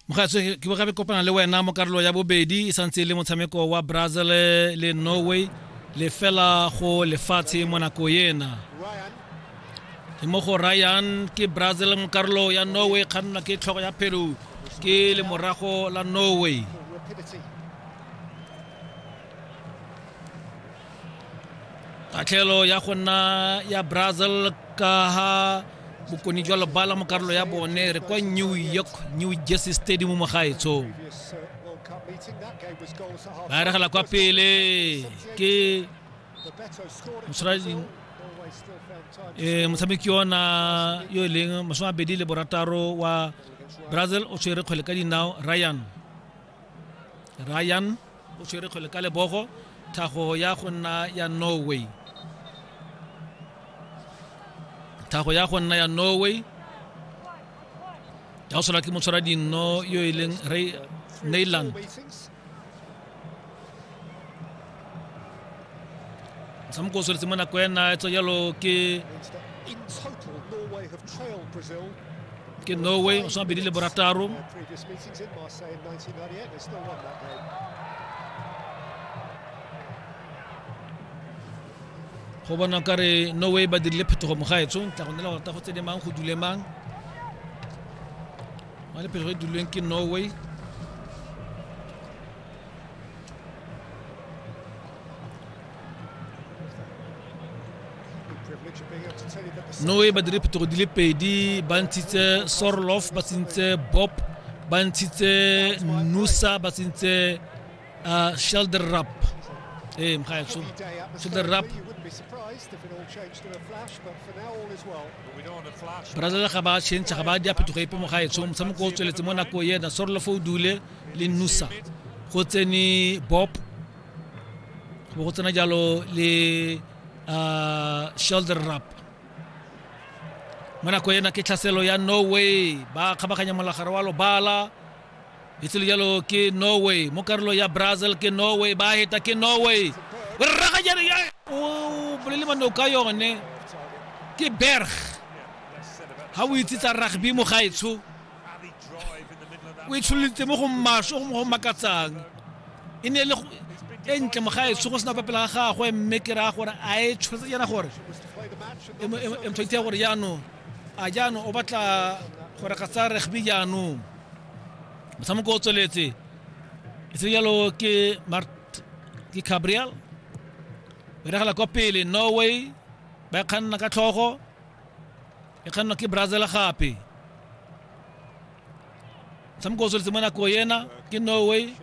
mogatso ke bo gabe kopana le wena mo karolo ya bobedi e santse e le motshameko wa brazil le norway le fela go lefatshe mo nako ena ke mo go ryan ke brazil mo karolo ya norway kgannwa ke tlhogo ya peru ke le morago la norway kgatlhelo ya go nna ya brazil ka ha bokoni jwa lebala mo karolo ya bone re kwa new york new jersey stadium mo gaetsong ba eregela kwa pele ke eh, motshameki ona yo e leng masome abedi le borataro wa brazil o tshwere kgwele ka dinao ryan ryan o tshwere kgwele ka lebogo thago ya go nna ya norway thago ya go nna ya norway ya go sola ke motshwara dinno yo e leng ray neyland motshameko o tsweletse mo nako ena etsa jalo ke ke norway o swana bedi le borataro go bona ka re norway ba dirile phetogo mogaetso tla go nela go rata go tse di mang go dule mang ba le phetogo e dulweng ke norway noe ba dire phetogo di le pedi ba ntshitse sorlof ba tsentse bob ba ntshitse nusa ba tsentse uh, shelder rap ee eh, mgaetsho shelder rap brazil ga ba change ga ba di a phetogo epe mogaetsho motshameko o tsweletse mo nako ena sorlof o dule le nusa go tsene bob bo go tsena jalo le uh, shoulder rap mo nako ena ke tlhaselo ya norway ba kgabaganya molagare wa lobala itselo jalo ke norway mo karolo ya brazil ke norway ba heta ke norway rragajane ya o bolele mano ka yone ke berg ga o itse tsa rugby mo gaetsho o e tshololitse mo go maswe go makatsang e ne e le e ntle mogaetso go sena fa pela ga gagwe mme ke raya gore a e tshwanetse jana gore emtshwantshe ya gore jaanong a jaanong o batla gore ga tsa rugby jaanong motshameko o tsweletse e se jalo ke ke gabriel o diragala kwa pele norway ba e kganna ka tlhogo e kgannwa ke brazil gape motshameko o tsweletse mo nako ena ke norway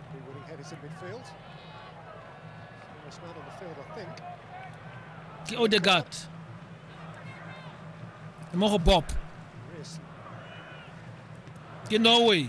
ke odegard mo go bob ke norway